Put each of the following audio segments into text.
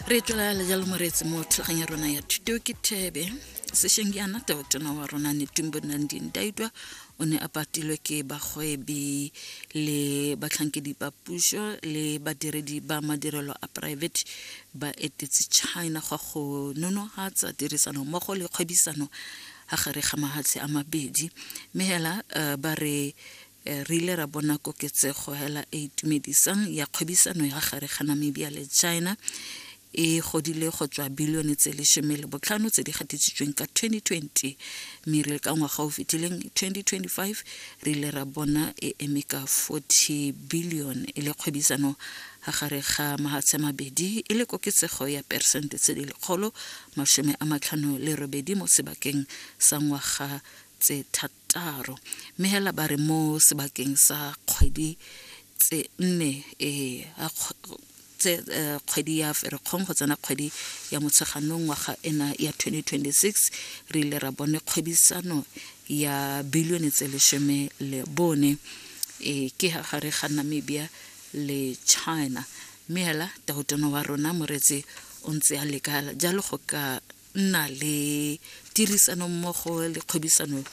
re tlola le jalo moreetsi mo thulagang ya rona ya thuto ke thebe sešeng ke ana totona wa rona ne tumbo nanding daitwa o ne a patilwe ke bagwebi le batlhankedi ba puso le badiredi ba madirelo a private ba etetse china gwa go nonogatsa tirisano mmogo le kgwebisano ga gare ga mahatshe a mabedi mme hela uh, ba re Eh, re ile ra bona koketsego hela e itumedisang ya kgwebisano ya gare ga namibia le china e godile go tswa bilione tse lesome le botlhano tse di gatisitsweng ka 2020 mme re le ka ngwaga o fetileng 2025 re ile ra bona e eme ka 40 billion e le kgwebisano ga gare ga mahatshe mabedi e le koketsego ya persente tse di lekgolo masome a matlhano le robedi mo sebakeng sa ngwaga tse thata Taro, mme hela ba re mo sebakeng sa kgwedi tse nne e tse eh, kgwedi ya ferekgong go tsena kgwedi ya motsheganong ngwaga ena ya 2026 re ile ra bone kgwebisano ya bilione tse lesome le bone e ke ha gare ga namibia le china mme hela tautona wa rona moretsi o ntse a leka jalo go ka nna le tirisanommogo le kgwebisano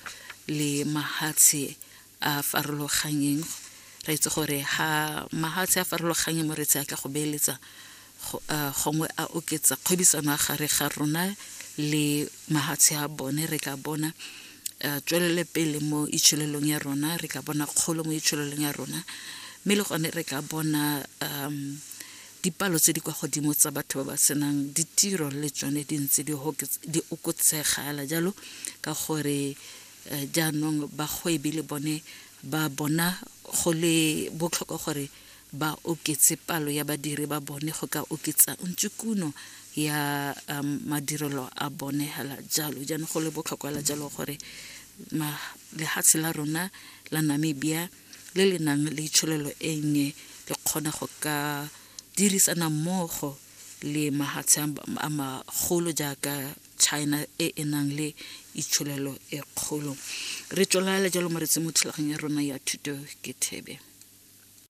le mahatshe a farologanyeng re itse gore ha mahatshe a farologanyeng mo re tse a ka go beeletsa gongwe a oketsa kgwebisano a gare ga rona le mahatshe a bone re ka bona tswelele pele mo itsholelong ya rona re ka bona kgolo mo itsholelong ya rona mme le gone re ka bona um Dipalo tse di kwa godimo tsa batho ba ba senang ditiro le tsone di ntse di okotsegala jalo ka gore eh, jaanong bagwebi le bone ba bona go le botlhokwa gore ba oketse palo ya badiri ba bone go ka oketsa ntse kuno ya um, madirelo a bone hela jalo jaanong go le botlhokwa la jalo gore lehatshe la rona la namibia le le nang le tsholelo e nnye le kgona go ka dirisana mmogo le mahatshe a magolo jaaka China e e nang le itsholelo e kgolo re tswelele jalo mo re tsemo thulaganyo ya rona ya thuto ke thebe